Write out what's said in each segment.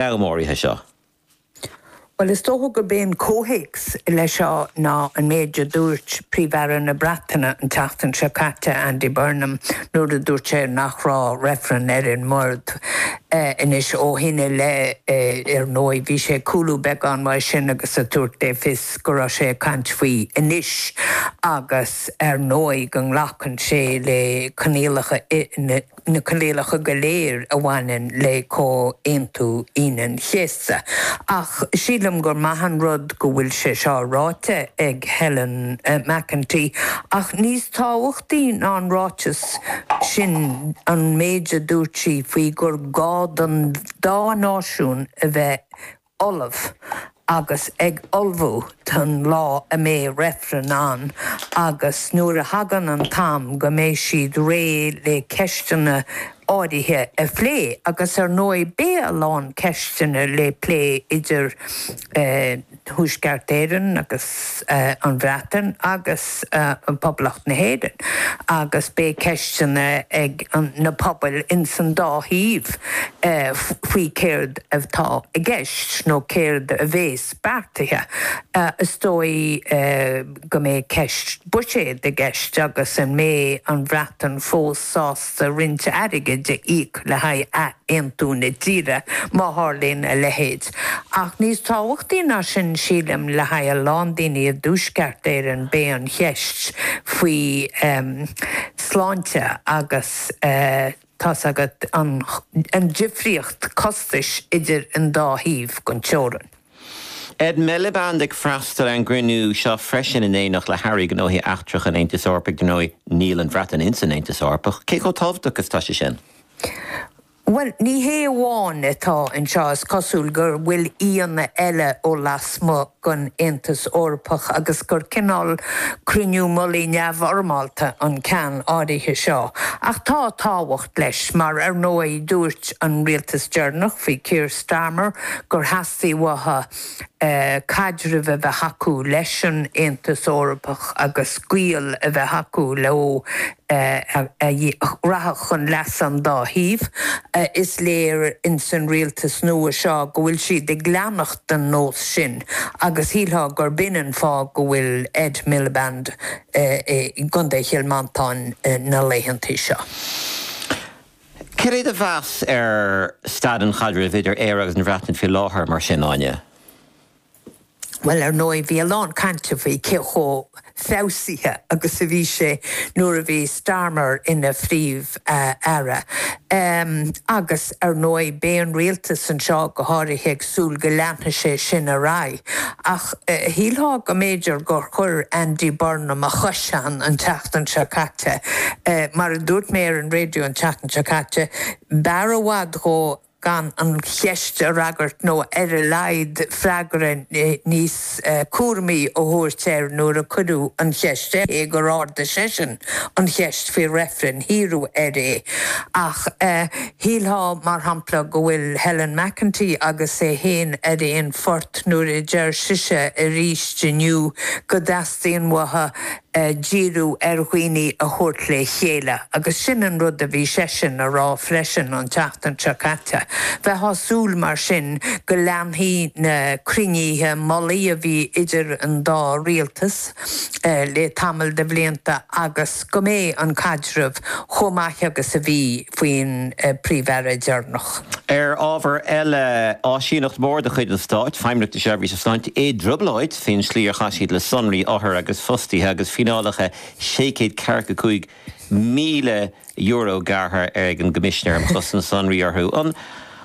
bheag áirithe seo. Bhuel, is dócha gurb é an comhthéacs leis seo ná an méid a dúirt Príomh-Aire na Breataine an tseachtain seo caite, Andy Burnham, nuair a dúirt sé nach raibh reifreann ar an mbord. Anois, ó shin i leith, ar ndóigh, bhí sé ag cúlú beagán uaidh sin agus ag tabhairt le fios go raibh sé ag caint faoi anois agus, ar ndóigh, go nglacann sé le coinníollacha na. na coinníollacha go léir a bhaineann le Comhaontú Aoine an Chéasta, ach sílim gur maith an rud go bhfuil sé seo ráite ag Helen McEntee, ach níos tábhachtaí ná an ráiteas sin an méid a dúirt sí faoi gur gá don dá náisiún a bheith ullamh agus ag ullmhú don lá a mbeidh reifreann ann agus nuair a thagann an t-am go mbeidh siad réidh le ceisteanna áirithe a phlé agus ar ndóigh beidh a lán ceisteanna le plé idir Thuaisceart Éireann agus an Bhreatain agus agus Poblacht na hÉireann agus beidh ceisteanna ag na pobail ins an dá thaobh faoi céard atá i gceist nó céard a bhéas beartaithe. Is dóigh go mbeidh ceist buiséid i gceist agus an mbeidh an Bhreatain fós sásta roinnt airgid a íoc le haghaidh aontú na tíre, má tharlaíonn a leithéid. Ach níos tábhachtaí ná sin, sílim, le haghaidh a lán daoine i dTuaisceart Éireann, beidh an cheist faoi sláinte agus, tá's agat, an difríocht costais idir an dá thaobh den teorainn. Ed Miliband ag freastal ar an gcruinniú seo freisin in éineacht le hAirí Gnóthaí Eachtracha an Aontais Eorpaigh. Dar ndóigh, níl an Bhreatain ins an Aontas Eorpach. Cé chomh tábhachtach is atá sé sin? Bhuel, ní hé amháin atá anseo, is cosúil go bhfuil aíonna eile ó lasmuigh den Aontas Eorpach agus gur cineál cruinniú mullaigh neamhfhoirmeálta an ceann áirithe seo. Ach tá tábhacht leis mar, ar ndóigh, dúirt an rialtas deireanach faoi Keir Starmer gur theastaigh uathu caidreamh a bheith acu leis an Aontas Eorpach agus gaol a bheith acu leo a rachadh chun leasa an dá thaobh. Is léir ins an rialtas nua seo go bhfuil siad ag leanacht den nós sin agus shílfeá gurb in an fáth go bhfuil Ed Miliband i gContae Chill Mhantáin na laethanta seo. Céard é do mheas ar staid an chaidrimh idir Éire agus an Bhreatain faoi láthair, mar sin, Áine? Bhuel, ar ndóigh, bhí a lán cainte faoi cé chomh feabhsaithe agus a bhí sé nuair a bhí Starmer ina Phríomh-Aire. Agus, ar ndóigh, beidh an rialtas anseo go háirithe ag súil go leanfadh sé sin ar aghaidh, ach shílfeá go mb'fhéidir gur chuir Andy Burnham a chois ann an tseachtain seo caite. Mar a dúirt mé ar an raidió an tseachtain seo caite, b'fhearr i bhfad dhó gan an cheist a fhreagairt nó ar a laghad freagra níos cúramaí a thabhairt air nuair a cuireadh an cheist air, cé nár ardaigh seisean an cheist faoi reifreann, fiafraíodh air é. Ach shílfeá, mar shampla, go bhfuil Helen McEntee agus é féin ar aon phort nuair a deir sise arís inniu go dteastaíonn uathu a dhíriú ar dhaoine a thabhairt le chéile agus sin an rud a bhí seisean a rá freisin an tseachtain seo caite. Bheifeá súil mar sin go leanfaí na cruinnithe mullaigh a bhí idir an dá rialtas le tamall de bhlianta agus go mbeidh an caidreamh chomh maith agus a bhí faoin Príomh-Aire deireanach. Ar ábhar eile, áisíneacht mhór de chuid an stáit, Feidhmeannacht na Seirbhíse Sláinte, i dtrioblóid. Faoin slí ar chaith siad le sonraí othar agus fostaithe agus fíneálacha sé chéad ceathracha cúig míle euro gearrtha ag an gCoimisinéir um Chosaint Sonraí orthu.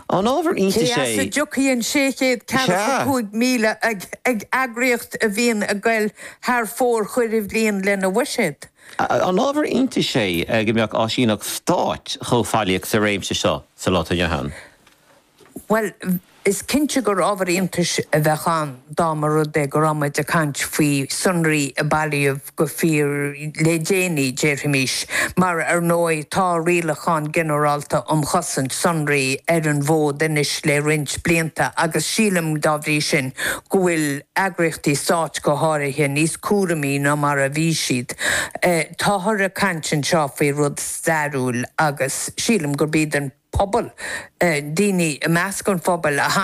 An ábhar iontais Cé as a dtiocfaidh an sé chéad ceathracha cúig míle ag eagraíocht a bhíonn ag goil thar fóir chuile bhliain lena bhuiséad? An ábhar iontais é go mbeadh áisíneacht stáit chomh faillíoch sa réimse seo sa lá atá inniu ann? Bhuel, is cinnte gur ábhar iontais a bheadh ann dá mba rud é go raibh muid ag caint faoi sonraí a bailíodh go fíor le déanaí, déarfaimis, mar ar ndóigh tá Rialachán Ginearálta um Chosaint Sonraí ar an bhfód anois le roinnt blianta agus sílim, dá bhrí sin, go bhfuil eagraíochtaí stáit, go háirithe, níos cúramaí ná mar a bhí siad. Táthar ag caint anseo faoi rud. stairiúil agus sílim gurb iad an pobal, daoine i measc an phobail a tháinig.